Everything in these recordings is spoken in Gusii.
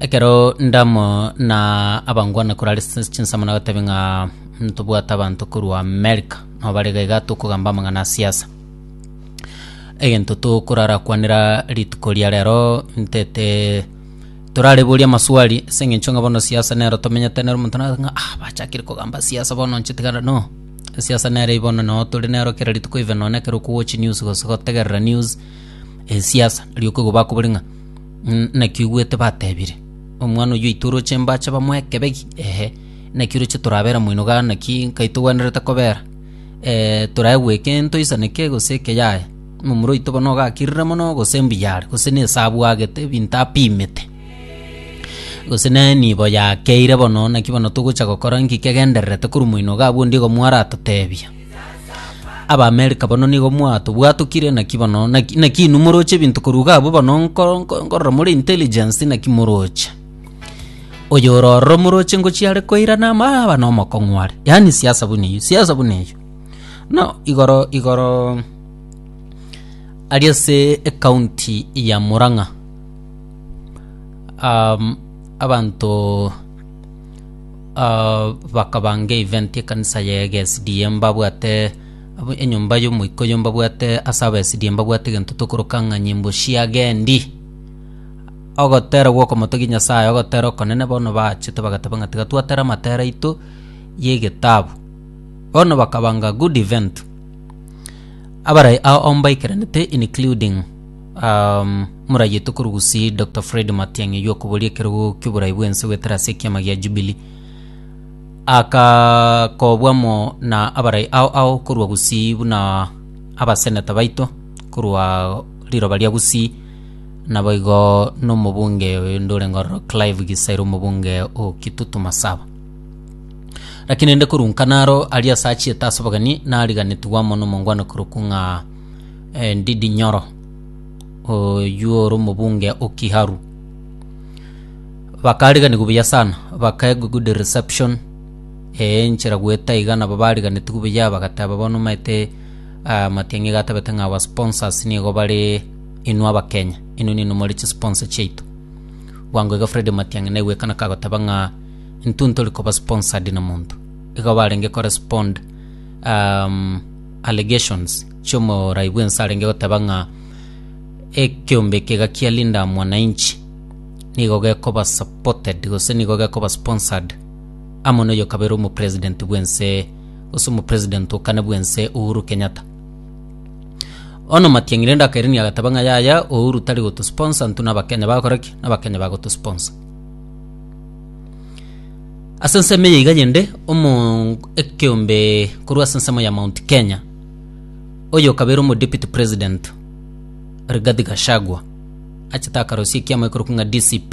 Ekero ndamo na abangwana korare ase chinsemo nagotebi ng'a ntobwate abanto korwa America nabo barega iga tokogamba amang'ana a siasa. Egento tokorara kwanera rituko ria rero ntete torareborie amaswali ase eng'encho ng'a bono siasa nero tomenyete nere omonto nare ng'a ah bachakire kogamba siasa bono inche tiga na no. Siasa nere eye bono no tore nero kera rituko even nonye ekero okowochi news gose gotegerera news, siasa ri'okoigwa bakobori ng'a. Naki oigwete batebire, Omwana oyio oito oroche mbache bamoe ekebegi? Ehe. Naki oroche torabera moinoga naki nkai togwenerete kobera? Ee, torae gweka ento isaneke gose eke yaye. Momura oito bono ogakirire mono gose mbuya are, gose nese abwagete ebinto apimete, gose nere nibo yakeire bono, naki bono togocha gokora nki kegendererete korwa moinoga abwo onde igo mwaratotebia? Abaamerika bono nigo mwatobwatokire, naki bono naki, naki inwe moroche ebinto koruga abwo bono nko- nko- nkorora more intelligence naki moroche oyo ororo moroche ngochia are koirana ama aba nomokong'u are yaani siasa buna eyio siasa buna eyio no igoro igoro aria ase ekaunti ya murang'a um, abanto bakabanga event ekanisa ya egeSDA mbabwate enyomba yomoika oyo mbabwate ase aba SDA mbabwate egento tokoroka ng'a nyimbo chia agendi. Ogotera gwa okomotogia Nyasaye ogotera okonene bono bachete bagateba ng'a tiga twatere amatera aito ye egetabu. Bono bakabanga good event abarai ao mbaikaranete including. Um, murayetwe korugusi Dr. Fred Matiang'i y'okoboria ekerogo ki'oborai bwense gwetera ase ekiama gia Jubilee akakobwa mo na abarai ao ao korwa Gusii buna abaseneta baito korwa riroba ria Gusii naboigo nomobunge oyonde ore Ngororo Clive Gisaira omobunge o Kitutu Masaba lakini nde korunka naro aria ase achiete ase obogeni nariganetigwa amo nomongwana korokwa ng'a Ndidi Nyoro, oyio ore omobunge o Kiharu. Bakariganigwa buya sana, bakaegwa good reception eh, enchera goeta iga nabo bariganetigwe buya bagateba bono omanyete ah, Matiang'i iga atabete ng'a our sponsors nigo bare inwe Abakenya, inwe ninwe more chisponsor chiaito. Bwango iga Fred Matiang'i naigwekana kagoteba ng'a intwe ntori koba sponsored na monto. Igo barenge korespond um, allegations. chi'omorai bw'ense arenge goteba ng'a ekeombe eke iga kia Linda Mwananchi nigo gekoba supported gose nigo gekoba sponsored amo noyo kabere omo president bw'ense gose omo president o kane bw'ense Uhuru Kenyatta. Bono Matiang'i rende akairania agateba ng'a yaya Uhuru tari gotu sponsor intwe na Abakenya bagokora ki? Na Abakenya bagotu sponsor. Ase ensemo eye iga yende omo ekeombe korwa ase ensemo ya Mount Kenya Oyokabere omo Deputy President Rigathi Gachagua achete akarosia ekiama ekorokwa ng'a DCP.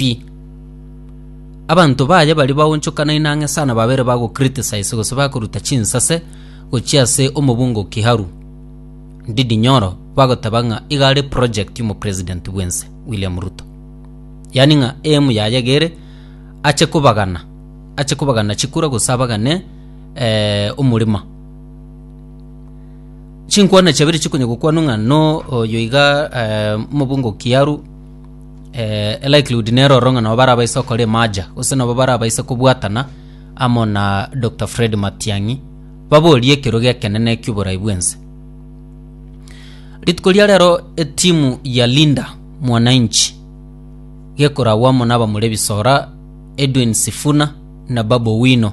Abanto baye baria baonchokanaine ang'e sana babere bago criticize gose bakoruta chinsase gochia ase omobunga o Kiharu Ndindi Nyoro bagoteba ng'a iga are project y'omo President bw'ense William Ruto. Yaani ng'a aim yaye iga ere ache kobagana ache kobagana chikura gose abagane eh, omorema. Chinkwana chiabere chikonya gokwanwa ng'a no oyo iga eh, mobungo kiaru eh, likelihood nero oro ng'a nabo barabaise okora emaja gose nabo barabaise kobwatana amo na Dr. Fred Matiang'i baborie ekero gekenene ki'oborai bwense rituko ria rero etimu ya Linda Mwananchi gekoragwa amo na abamura ebisora Edwin Sifuna na Babu Owino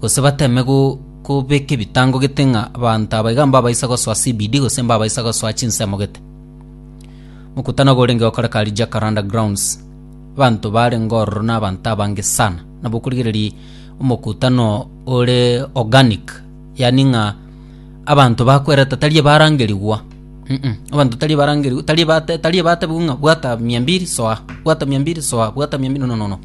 gose bateme gobeka ebitango gete ng'a abanto aba iga mbabaisa gosoa CBD gose mbabaisa gosoa chinsemo gete. Mokutano ogo orenge gokoreka aria Jacaranda Grounds, abanto barenge ororo na abanto abange sana. Nabo okorigereria omokutano ore organic, yaani ng'a abanto bakwerete tari ebarangerigwa, mm abanto tari ebarangerigwa tari ebate tari ebatebigwa ng'a bwata mia mbiri soa, bwata mia mbiri soa, bwata mia mbiri, no no no no.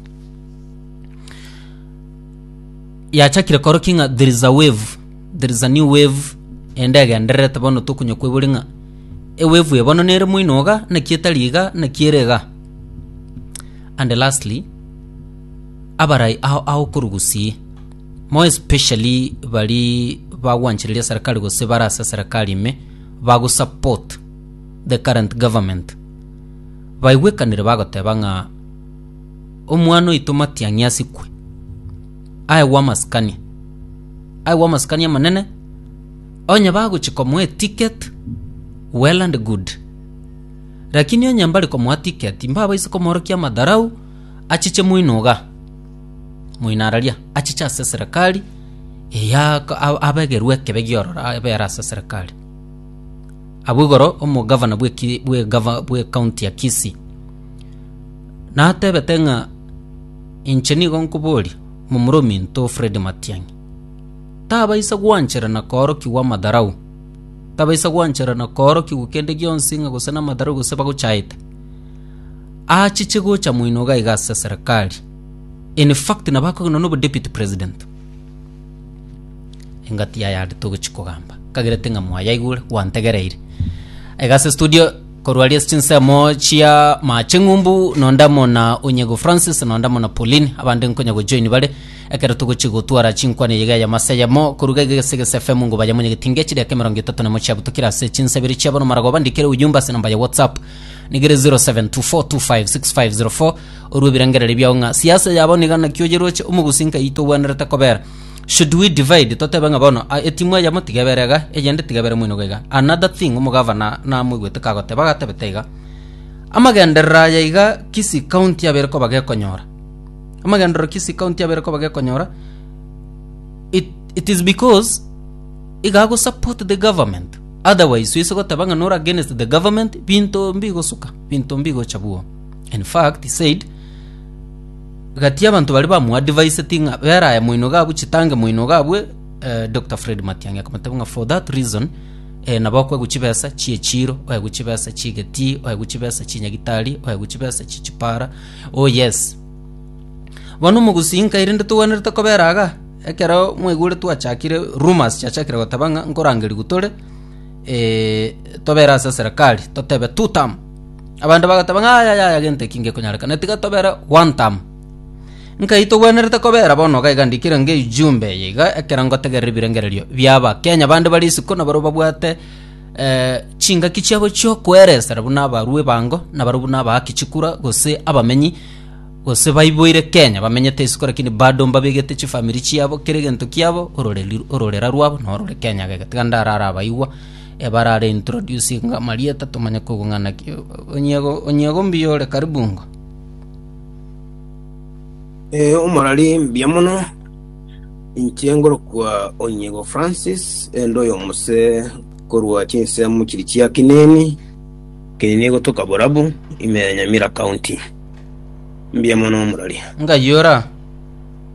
yachakire korokia ng'a there is a wave there is a new wave ende egendererete bono tokonya kwebori ng'a ewave eye bono nere moino iga naki etari iga naki ere iga and lastly abarai ao agokorugusia more especially baria bagwanchereria serikali gose bare ase serikali ime bago support the current government baigwekanire bagoteba ng'a. Omwana oito Matiang'i asikwe, aegwe amasikani, aegwe amasikani amanene, onye bagochia komoa eticket, well and good. Lakini onye mbare komoa ticket, mbabaisa komorokia amadharau, achiche moino iga, moino araria, achiche ase eserekari eya a- abegerwe ekebe giororo abe ere ase eserekari. Abwo igoro omogavana bw'eki- bw'egava- bw'ecounty ya Kisii. Natebete ng'a inche nigo nkoboria momura ominto Fred Matiang'i, tabaisa gwanchera na koorokigwa amadharau, tabaisa gwanchera na koorokigwa kende gionsi ng'a gose namadharau gose bagochaete. Achiche gocha moino iga iga ase serikali. In fact nabo akogenda nobo deputy president. Engati yaye aria togochia kogamba. Kagerete ng'a mwayaigure, gwantegereire. Iga ase studio, korwa aria ase chinsemo chia Mache Ng'umbu, nonde amo na Onyago Francis, nonde amo na Pauline, abande nkonya gojoin bare, ekero togochia gotwara chinkwana eyige eyemo ase eyemo, koruga iga gese gese FM ngo baye monyege tinga chideka emerongo etato nemo chiabutokire ase chinsa ibere chiabo na maragoba, ndikere ujumbe ase namba ya WhatsApp, nigere 0724256504, orwe ebirengererio biao ng'a siasa yabo niga naki oyeroche omogusi nkai tobwenerete kobera should we divide totebe ng'a bono a- etimu eyemo tiga ebere iga eyende tiga ebere moino gaiga another thing omogavana namoigwete kagoteba agatebete iga amagenderero aya iga kisi county yabere koba gekonyora amagenderero kisi county yabere koba gekonyora it, it is because iga go support the government otherwise soise goteba ng'a nora against the government binto mbigosuka binto mbigocha buo In fact, he said, gati abanto baria bamu adviseti ng'a beraye moino gabue chitangi moino gabue eh, Dr. Fred Matiang'i akamotebia ng'a for that reason eh, nabo okoegwa chibesa chie chiro oegwe chibesa chigetii oegwe chibesa chinyagitari oegwe chibesa chi chipara oh yes bono omogusii nkaire nde togwenerete kobera aga ekero mwaigure twachakire rumors chiachakire goteba ng'a nkorangeria gutore eh, tobere ase serikali totebe two term Abanto bagateba ng'a, Yaya, yaya, gento eki ngekonyarekana, tiga tobere gwantam. Nkai togwenerete kobera bono iga iga ndikire nge ijumbe eye iga ekero ngotegerera ebirengererio bi'abakenya bande bare isiko na barabwo babwate eh, chingaki chiabo chiokoeresera buna abarwa ebango na barabwo buna abaaki chikura gose abamenyi gose baiboire Kenya bamenyete isiko lakini bado mbabegete chifamiri chiabo kera egento kiabo ororeri ororera rwabo norore Kenya gega tiga ndarare abaigwa Ebarare introducing amarieta tomanye koigwa ng'a naki onyiego onyiego mbuya ore karibu ng'a. Eh, omorari mbuya mono inche ngorokwa onyiego francis ende oyo omose korwa chinsemo chiri chia kineni kineni egotoka borabu ime ya nyamira county mbuya mono omorari Ng'ayora.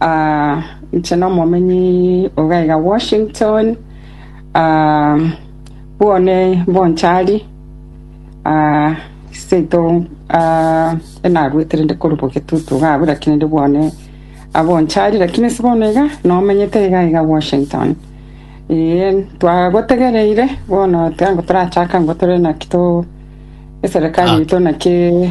Aa, inche nomomenyi o gaiga Washington, aa, bwone bonchari, aa, seito, aa, enaruete rende korwa bogetutu iga abwo, lakini rende bwone abonchari, lakini ase bono iga nomenyete iga iga Washington. Ee, twagotegereire bono tango torachaka ngo tore naki to eserekari yaito naki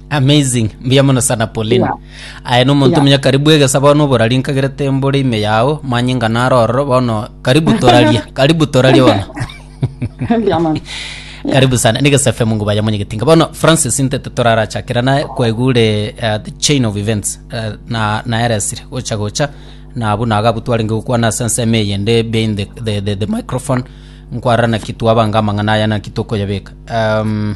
Amazing. Mbuya mono sana Pauline. Yeah. Aye no muntu Yeah. munya karibu egesa bono oborari nkagerete mbore ime yao manyinga naroro bono karibu toraria. karibu toraria bono. Mbuya mono. Yeah. karibu sana nigesa fm ngo baya munyegetinga bono francis ntete torarachakera naye kwegure uh, the chain of events uh, na naeresire gocha gocha nabu nagabutwarenge gokwana ase enseme eye nde behind the, the, the, the microphone nkwarana kitu abanga amang'ana aya naki tokoyabeka um,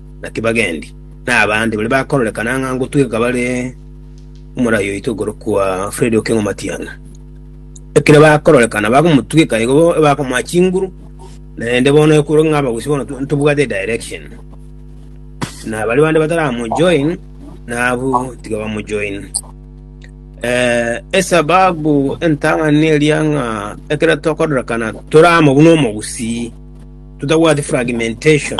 Naki bagendi, na abande baria bakororekana ng'a ngotweka bare omorai oito okorokwa Fredi o King'omatiana. Ekero bakororekana bakomotweka igo bakomoa chinguru, naende bono ekorwa ng'a abagusii bono ntobwate direction. Na baria bande bataramojoin, na abwo tiga bamojoin. Eh, esababu entang'ani eria ng'a ekero tokororekana toramo buna omogusii, totabwati fragmentation.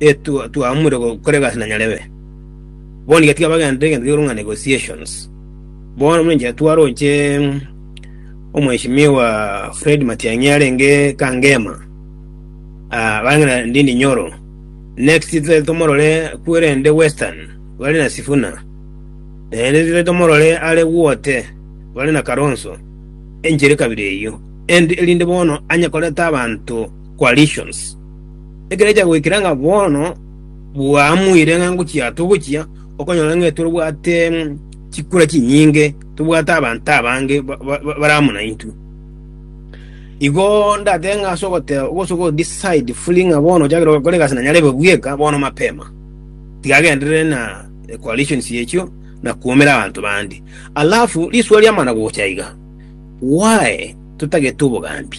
e twa- twaamure go- kore egasi na nyarebe. Bono nigo tiga bagenderere egento gikoro ng'a negotiations. Bono buna enchera twaroche omweshimiwa Fred Matiang'i arenge Kangema, ah, barenge na Ndindi Nyoro. Next totete tomorore kwerende Western, bare na Sifuna. Naende totete tomorore are Guote, bare na Kalonzo. Enchera ekabire eyio. End- erinde bono anye koreta abanto coalitions. Ekero chiagoikera ng'a bono bwamuire ng'a ngochia togochia, okonyora ng'a etwe bwate chikura chinyinge, tobwate abanto abange ba- ba- ba- bare amo naintwe. Igo ndatebe ng'a ase ogoteba gose ogodecide fully ng'a bono ochakire gokora egasi na nyarebe bweka bono mapema, tigagenderere na coalitions echio na koumera abanto bande. Alafu risuo riamana gocha iga, why totagete obogambi?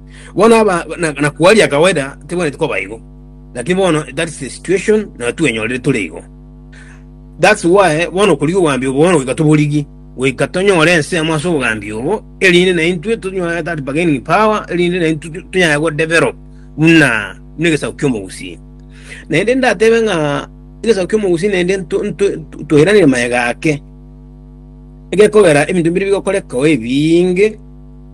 Bono aba na, na kwaria kawaida tebwenereti koba igo, lakini bono that's the situation na twenyorire tore igo. That's why bono okorigia obogambi obo bono goika toborigie, goika tonyore ensemo ase obogambi obo, erinde na intwe tonyore that bargaining power, erinde na intwe tu- tunyare go develop buna buna egesaku ki'omogusii. Naende ndatebe ng'a egesaku ki'omogusii naende nto- nto- nto- toiranire mayega ake, egekogera ebinto mbire bigokoreka oo ebinge,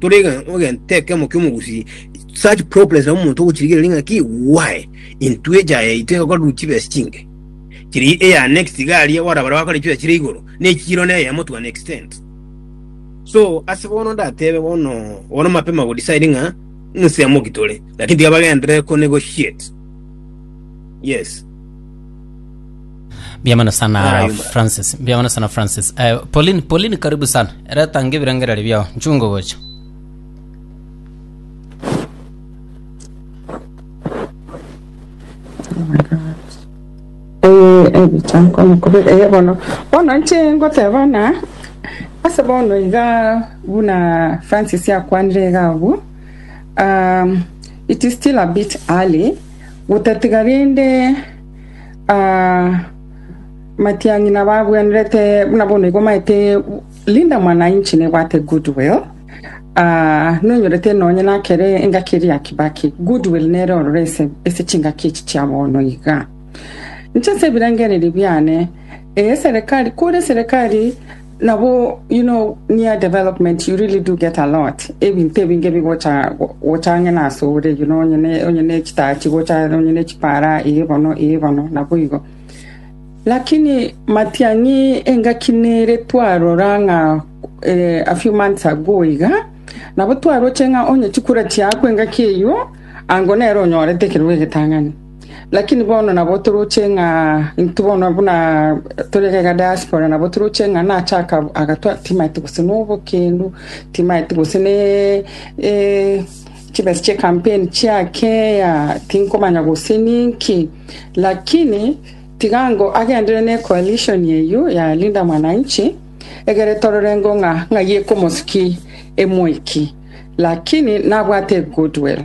Tore egento ekemo ki'omogusii, such problems nabo omonto ogochirigereria ng'a ki why intwe echa yaito egokorerwa chibesa chinke chiri eya next iga aria ora bare bakore chibesa chire igoro nechiro ne eyemo to an extent so ase bono ndatebe bono bono mapema go decide ng'a nsemo ki tore lakini tiga bagenderere ko negotiate yes Mbiamano sana Francis, mbiamano sana Francis. Eh, Pauline, Pauline karibu sana. Reta ngebirengereri biao, nchungo gocha. ebichanko mukubira eh bono bono nche ngoteba na ase bono iga buna francis akwanire iga abu um, it is still a bit early gotatiga rinde Ah, matiang'i nabagwenerete buna bono igo maete Linda mwananchi nebwate goodwill Ah, nonyorete nonye nakere engaki eria ya Kibaki goodwill nere ororo ase ase chingaki echi chia bono iga inche ase ebirengererio biane eye serikali kore serikali Nabo you know near development you really do get a lot ebinto ebinge bigocha go- gocha ang'e na ase ore you know onye ne onye ne chitaya chigocha onye ne chipara eye bono eye bono nabo igo lakini matiang'i engaki nere twarora ng'a eh, a few months ago iga nabo twaroche ng'a onye chikura chiaku engaki eyio ango nere onyorete ekerogo egetang'ani Lakini bono nabo toroche ng'a intwe bono buna tore iga diaspora nabo toroche ng'a nache aka- agatwa timaeti gose nobokendu, timaeti gose ne eh, chibesa chia campaign chiake ya tinkomanya gose ninki. Lakini tiga ngo agendere ne coalition eyio ya Linda Mwananchi, egere torore ngo ng'a ng'ai ekomosiki emweki. Lakini nabwate a goodwill.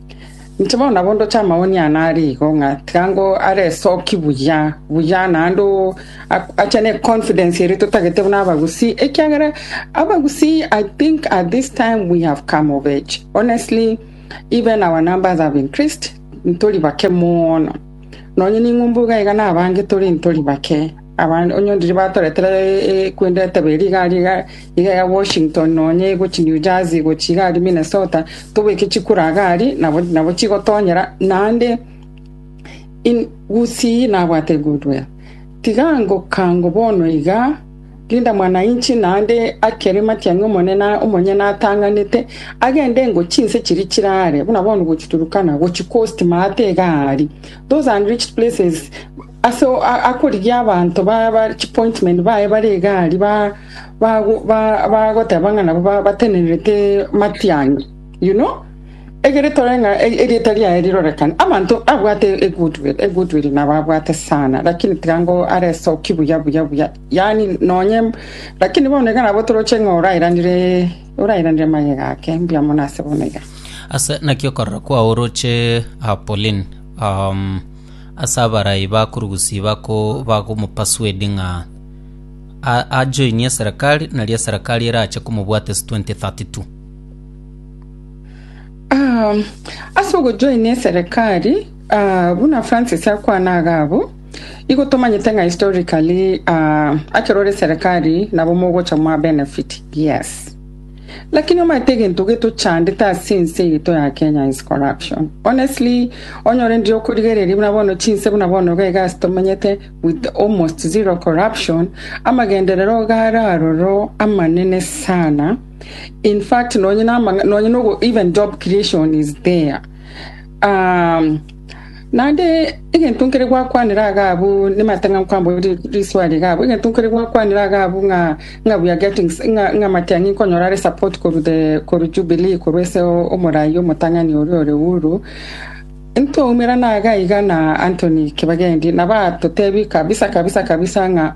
Inche bono nabo ndoche amaoni aane are igo, ng'a tiga ngo are esoki buya buya, naende o- a- ache ne confidence eria totagete buna Abagusii, ekiagera Abagusii I think at this time we have come of age. Honestly, even our numbers have increased, ntori bake mono. Nonye ning'umbu iga iga na abange tore ntori bake. Abande onye ndiri batoretera kwenda etebe eria igari iga ya Washington nonya egochi New Jersey gochi igari Minnesota tobeke chikura iga ari nabo chigotonyera naende in gusii nabwate good well tiga ngokango bono iga Linda Mwananchi naende akere matiang'i omonene omonyene atang'anete agende ngo chinse chiri chirare buna bono gochi Turkana gochi coast maate iga ari those and rich places Ase akorigia abanto chipointment baye bare egari bagoteba ng'a nabo batenenerete matiang'i you know egere tore ng'a erieta riaye rirorekane. Abanto abwate egoodwill, egoodwill nabo abwate sana lakini tiga ngo aresoki buya buya buya yaani nonye lakini bono iga nabo toroche ng'a orairanire orairanire magega ake mbuya mono ase bono iga. Ase naki okorora kwao oroche Pauline um, ase abarai ba kurugusi bako bagomopasuedi ng'a a- ajoinie eserekari, nario eserekari erache komobwate ase 2032. Ah, ase ogojoina eserekari ah, buna Francis akwana iga abwo, igo tomanyete ng'a historically ah, akero ore eserekari nabo mogocha moa benefit. Yes. Lakini omanyete egento getochandete ase ense eye to ya Kenya is corruption. Honestly, onyore ndire okorigereria buna bono chinse buna bono iga iga ase tomanyete with almost zero corruption, amagenderero iga are aroro amanene sana. In fact, nonye na amang'a- nonye nogo even job creation is there. Um, Naende egento nkere gwakwanera iga abwo nematang'ancho kwambwo riswari iga abwo, egento nkere gwakwanera iga abwo ng'a ng'a we are getting ng'a matiang'i nkonyora are support korwa the korwa Jubilee korwa ase omorai omotang'ani oria ore Uhuru, ntwaumerana iga iga na Anthony Kibagendi nabo agototebia kabisa kabisa kabisa ng'a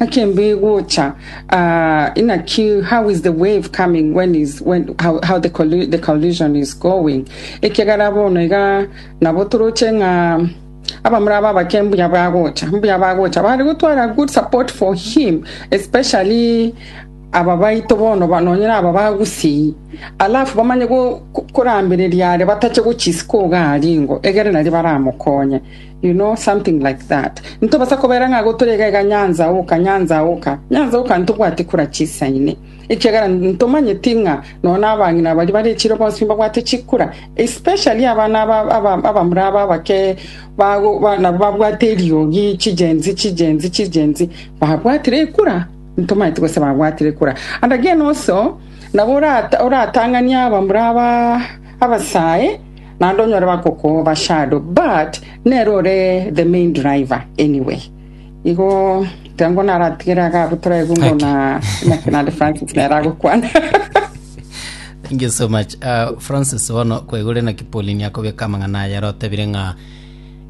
Naki embe egocha, ah, inaki how is the wave coming when is when how, how the, collu- the collusion is going ekiagera bono iga nabo toroche ng'a abamura aba abake mbuya bagocha mbuya bagocha bari gotwara good support for him especially aba baito bono ba- nonyora aba bagusii alafu bamanye go- ko- korambereria are batache gochisiko iga aringo egere nari baramokonye You know, something like that. Ntobasa kobera ng'a gotoria egega nyanza oka, nyanza oka, nyanza oka ntobwati kura chisaine. Ekiagera ntomanyeti ng'a nonya nabang'ina baria bare echiro bonsi nibabwate chikura, especially abana aba aba abamura aba abake bago ba, nabo babwate eriogi chigenzi chigenzi chigenzi babwatire ekura ntomanyeti gose babwatire ekura and again also nabo orata oratang'ania abamura aba abasae naende onyore bakokoba shadow but nere ore the main driver anyway igo tiga ngo naratigere iga abwo toraigu ngo Okay. na na kinande francis nere agokwana thank you so much uh, francis bono kwaigure na kipolini akobeka amang'ana aya rotebire ng'a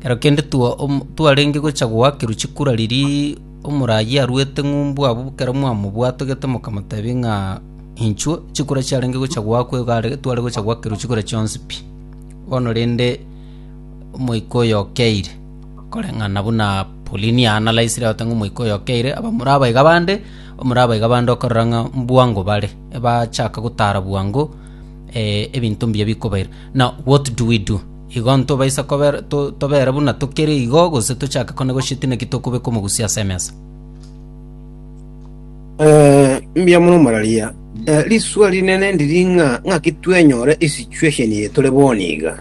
kero kende twa- om- twarenge gocha goakirwa chikura riri omorayi arwete ng'umbu abwo kero mwamobwatogete mokamotebi ng'a Inchuo, chikura chiarenge gocha goakwa egare tware gocha goakerwa chikura chionsi pi. Bono rende omoika oyo okeire, koreng'ana buna Pauline aanalaisire agote ng'a omoika oyo okeire, abamura abaiga bande, omura abaiga bande okorora ng'a mbwango bare, ebachaka gotara bwango eh, ebinto mbuya bikobaira. Now what do we do? Igo ntobaisa kobera to tobera buna tokere igo gose tochake kone gose gose naki tokobeka omogusia ase emesa? Mbuya mono omorwaria. Risuo rinene ndiri ng'a ng'aki twenyore esituesheni eye tore bono iga,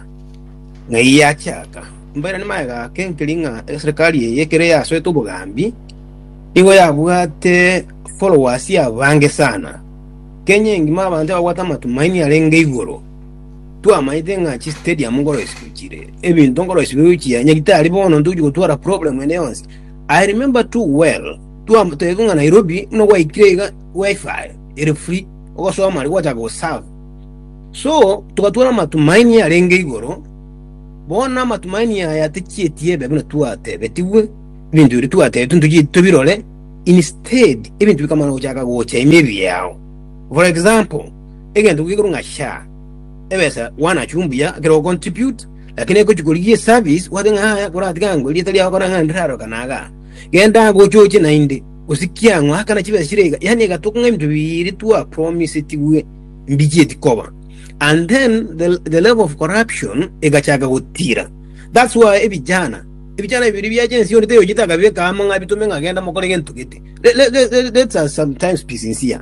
ng'ai yachaka. Mbaira nimaye gake nkeri ng'a eserikari eye ekero yasoete obogambi, nigo yabwate followers abange sana. Kenya engima abanto babwate amatumaini arenge igoro. Twamanyete ng'a chistadium nkoro ase chichire, ebinto nkoro ase bigochia, onye tari bono ntochi gotwara problem ende yonsi. I remember too well, Twamotebete ng'a Nairobi nogwaikire iga Wi-Fi ere free ogosoma aria gwachaka goserve. So togatwara amatumaini arenge igoro, bono amatumaini aya tachieti ebe buna twatebetigwe, ebinto biria twatebetigwe ntochieti tobirore, instead ebinto bika mana gochaka gocha ime ebiao. For example, egento gekorwa ng'a SHA, ebesa wana achia ombuya ekero o contribute, lakini egochia korigia esabisi, gwateba ng'a yaya koratige ango eria etari yao kore ang'e ndirarokana igaa. Genda agochoche naende, osikie ang'o akana chibesa chire iga, yaani egatuko ng'a ebinto bire twa promisetigwe mbichieti koba. And then the, the level of corruption egachaka gotira. That's why ebijana ebijana bibiri biacha ensi onde teyochete akabeka amo ng'a bitume ng'a genda mokore gento gete. Let, let, let, let, let us sometimes be sincere.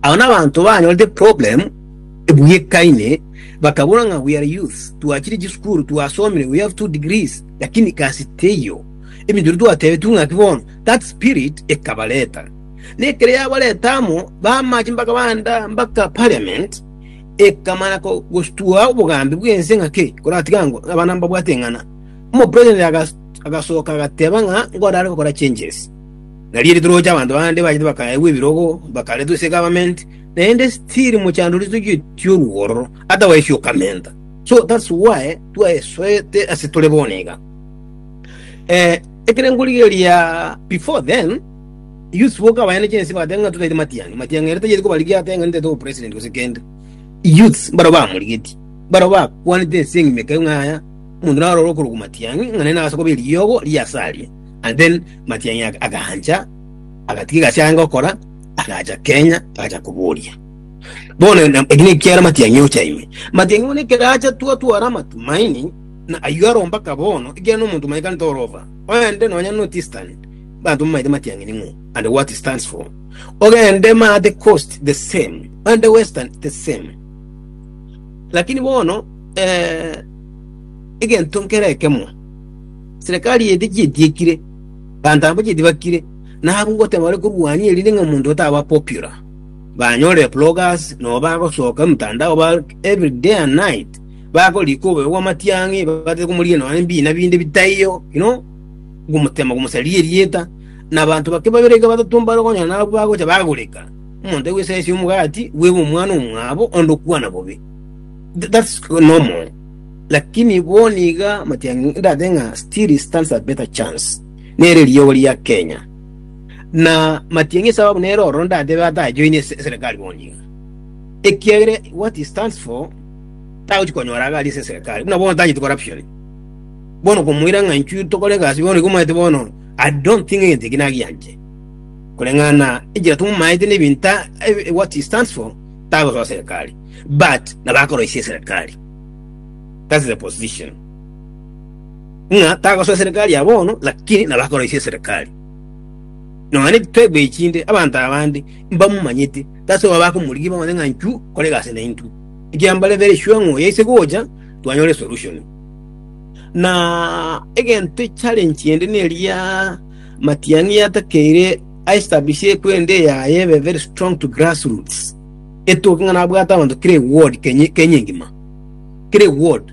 Abo n'abanto banyorete problem ebuya ekaine bakabora ng'a we are youth twachire chisukuru twasomire we have two degrees Lakini gasi teiyo, ebinto ebi twatebitigwe ng'aki bono, that spirit ekabareta. Na ekero yabareta amo, bamache mpaka banda mpaka parliament, ekamana ko- gostua obogambi bw'ense ng'a ki koratiga ango abana mbabwate eng'ana. Omopresident agas- agasoka agateba ng'a ngore are gokora changes. Nario ritoroche abanto bande bachete bakaegwa ebirogo, bakaretwa ase egovernment, naende still mochandorisiwe otiorwa ororo, otherwise okamenta. So that's why twaesoete ase tore bono iga. Eh, ekere nkorigeria before then, Yusuf oka abayane chensi bagateba ng'a tutaite matiang'i. Matiang'i ere tayeti kobarigia ateba ng'a nitaite obopresident gose kende. Youths mbaro bamorigetie. Mbaro bakwanete ense eng'ima ekayo ng'a aya, omonto narore okorokwa matiang'i ng'a naye nagase koba eriogo ria ase aria. And then matiang'i aga- agaancha, agatiga egasi arenge gokora, agacha Kenya, agacha koboria. Bono na- eki ne ekiara amatiang'i ocha ime. Amatiang'i bono ekero acha twatwara amatumaini, na ayio aromba ka bono, ekiagera nomonto mwaye kare torova. Ogende nonya no Tistan, abanto bamaete amatiang'i ning'o, and what it stands for. Ogende ma the coast, the same. Ogende western, the same. Lakini bono, eh, egento nkere ekemo, serikali edi chietiekire, abanto aba chietibakire, nabo goteba bare korwania erinde ng'a omonto oyo taba popular. banyore eplogas, nonya bagosoka emotandao ba every day and night, bagorika oboyo bw'amatiang'i, batete komorigia nonya nebiina binde bitaiyo, you know, gomotema, gomosaria erieta, na abanto bake babere iga batato mbare okonyora nabwo bagocha bagoreka omonto aigwe esese y'omogati, bwebe omwana omwabo, onde okwana bobe. Th- That's normal. Lakini bono iga amatiang'i ndate ng'a still stands a better chance. Nere eriogo ria Kenya. Na matiang'i esababu nere ororo ndatebe ata ajoine ase eserekari bono iga. Ekiagera what he stands for tagochi konyora iga aria ase eserekari buna bono tanyeti corruption. Bono komoira ng'a inchuo tokore egasi bono igo omanyete bono I don't think egento eki nagianche. Koreng'ana enchera tomomaete na ebinto eh, what he stands for tagosoa serekari but nabo akoroisia eserekari. That's the position. ng'a tagosoa eserekari ya bono, lakini naro akoroisia eserekari. Nonya nitwegwa echinde, abanto abande mbamomanyete, tase obo bakomorigia bamanye ng'a inchuo kore egasi naintwe. Ekiagera mbare very sure ng'a oyaise gocha, twanyora esolution. Na egento challenge ende neria matiang'i yatakeire a establish ekwenda eyaye ebe very strong to grassroots, etoke ng'a nabwate abanto kera eward Kenya Kenya engima, kera eward.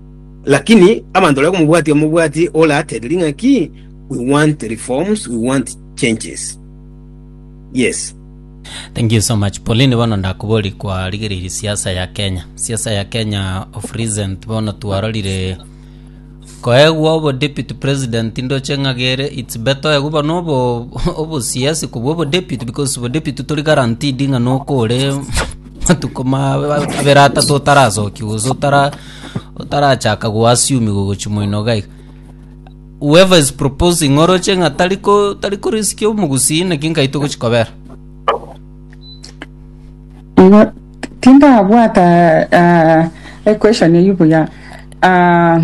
Lakini abanto baria komobwatia omobwati oratebirie ng'a ki? We want reforms, we want changes. Yes. Thank you so much Pauline bono ndakobori kwarigereiri siasa ya Kenya siasa ya Kenya of recent bono twarorire koegwa obo deputy president ndoche ng'agere it's better oegwe bono obo obo siasi kobwa obo deputy because obo deputy tori guaranteed ng'a nokore matuko ma abere atatu otarasoki gose otara otarachaka goassume gogochia moinogo aiga. Whoever is proposing oroche ng'a tari ko tari ko risk omogusii naki nkai togochia kobera. Igo tindabwata ah, equation eyio buya Ah,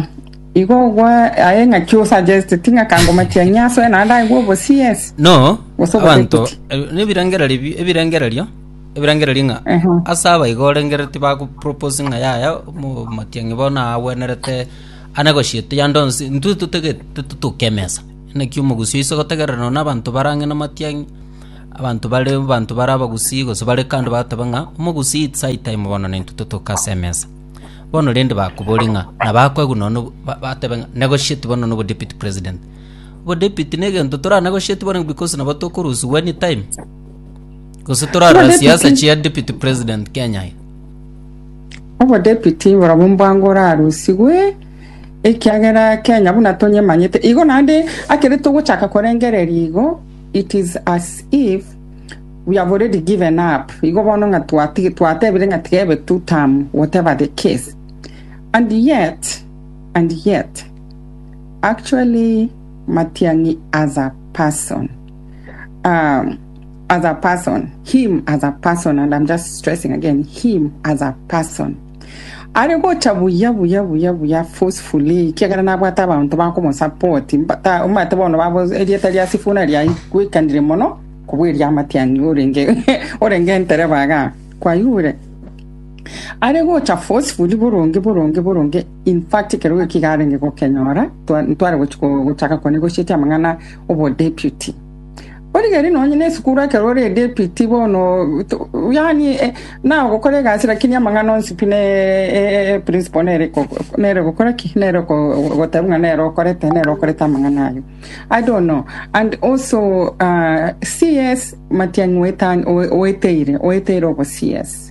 igo gwa aye ng'aki osuggest ting'a kangomachia nyasoe naende aigwe obo CS No, Gose abanto oboteguti. eh, nebirengererio bi- ebirengererio Ebirengererio ng'a ase aba iga orengere tibagoproposi ng'a yaya omotiang'i bono agwenerete ane gochia toyande onsi intwe totagete totoke emesa naki omogusii oise gotegerera nonya na abanto bare ang'e na amatiang'i abanto bare abanto bare abagusii gose bare kando bagoteeba ng'a omogusii it's high time bono na intwe totoke ase emesa bono rende bakoboria ng'a nabo akoegwa nonya na obo ba- batebe ng'a negochieti bono nonya na obodeputy president obodepute na egento toranegochieti bono because nabo tokorusiwa anytime. Gose torarora siasa chia deputy president Kenya aya. Obodepiti borobwo mbwango orarusigwe ekiagera Kenya buna tonyemanyete igo naende akere togochaka korengereria igo it is as if we have already given up igo bono ng'a twati- twatebire ng'a tiga ebe two term whatever the case and yet and yet actually Matiang'i as a person um, as a person him as a person and i'm just stressing again him as a person are gocha buya buya buya buya forcefully kiagera nabwate abanto bakomosapoti omate bono babo erieta ria sifuna riagwekanire mono kobwa eria matiani orenge orenge entereba ga kwayure are gocha forcefully boronge boronge boronge In fact ekero eki garenge gokenyora twa- ntware gochi ko- gochaka konegotiatia amang'ana obodeputy bono gari nonye na esukuru ekero ore edeputy bono to- yaani eh, nao gokora egasi lakini amang'ana onsi pi ne e- e- principle nere ko- ko- nere gokora ki nere ko- goteba ng'a nere okorete nere okorete amang'ana aye i don't know and also ah, CS matiang'i oetan- oe- oeteire oeteire obo CS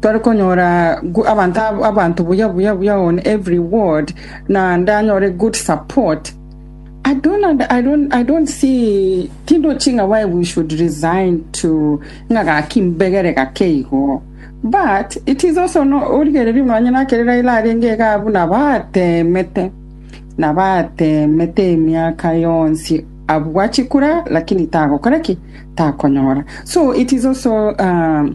Tore konyora gu- abanto ab- abanto buya buya buya on every ward na ndanyore good support I don't, und- I don't, I don't see tindochi ng'a why we should resign to ng'a gaki mbegere gake igo but it is also no, origererie buna onye nakere Raila arenge iga abwo nabo atemete nabo atemete emiaka yonsi abwachi kura lakini tagokora ki takonyora so it is also um,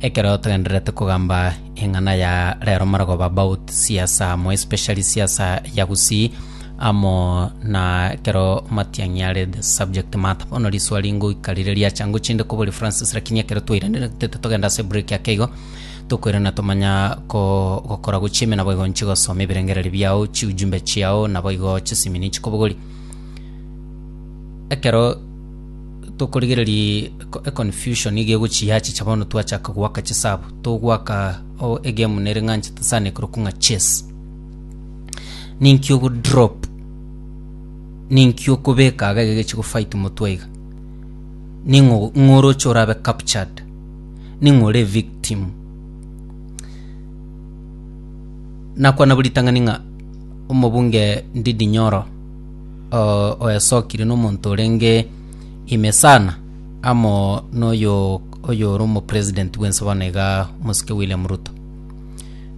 Ekero togendererete kogamba eng'ana ya rero marogoba about siasa more especially siasa ya Gusii amo na ekero Matiang'i are the subject matter bono riswali ngoika rire riacha ngochie inde koboria Francis lakini ekero twairaneretete togenda ase break ake igo tokoirana tomanya ko gokora gochia ime nabo igo nchie gosoma ebirengererio biao chiujumbe chiao naboigo chisimini chikobogori ekero Tokorigereria eko- econfusion iga egochia yachicha bono twachaka goaka chisabu. Togoaka o- egame nere ng'a nchete sana ekorokwa ng'a chess. Ninki ogo drop, ninki okobeka iga egeke chigofight motwe iga. Ning'o ng'oroche orabe captured, ning'o ore evictim. Nakwana bo ritang'ani ng'a omobunge Ndindi Nyoro. oyasokire nomonto orenge ime sana amo noyo oyore omopresident bwensi bono iga omosike William Ruto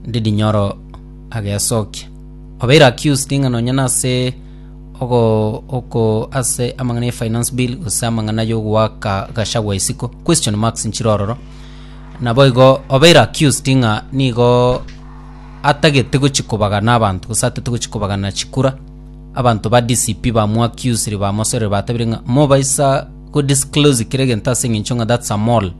Ndindi Nyoro agesokia obeire accused ng'a nonye nase ogo oko ase amang'ana ya finance bill gose amang'ana yogoaka Gachagua isiko question marks nchire ororo naboigo obeire accused ng'a nigo atagete gochi kobagana abanto gose atete gochi kobagana chikura Abanto ba DCP bamoaccusire, bamosorere, batabire ng'a mobaisa go disclose kera egento ase eng'encho ng'a that's a mole.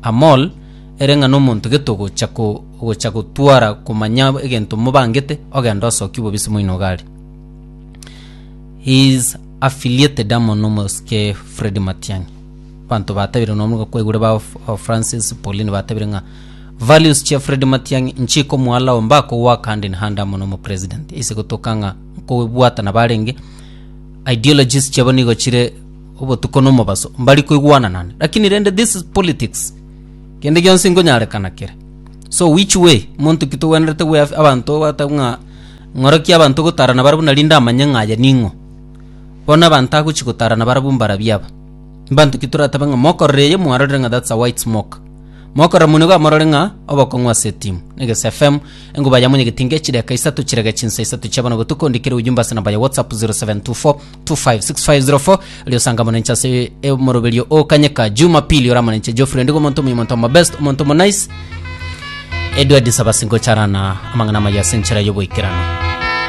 A mole ere ng'a nomonto gete ogocha ko ogocha gotwara komanya egento mobangete ogende osokie obobisi moino iga aria. He is affiliated amo na omosike Fred Matiang'i. Abanto batabire nonya kwaigure ba Francis Paulini batabire ng'a Values chia Fred Matiang'i inche ikomoalao mbakogoaka hand in hand amo nomo president ase gotoka ng'a nkobwata nabarenge ideologies chiabo nigo chire obotuko na omobaso mbari koigwananane lakini rende this is politics kende gionsi nkonyarekana kere so which way monto ki togwenerete gwe abanto bata ng'a ng'oroki abanto gotarana barabwo nari ndamanye ng'a aye ning'o bono abanto agochi gotarana barabwo mbarabia aba mbanto ki toratabe ng'a mokorora eye mwarorire ng'a that's a white smoke Mokoromwa nigo amorore ng'a obokong'u ase etimu. Negese FM, enguba yamo nyagete inga echideka isato chirega chinsa isato chia bono botuko ondikere ujumbe ase namba ya WhatsApp 0724256504 erio osanga amanenche ase omoroberio okanyeka Jumapili ore amanenche Geoffrey ndigo omonto omuya omonto omo best omonto omo nice Edward Nsabasi ngocharana amang'ana amaya ase enchera y'oboikeranu.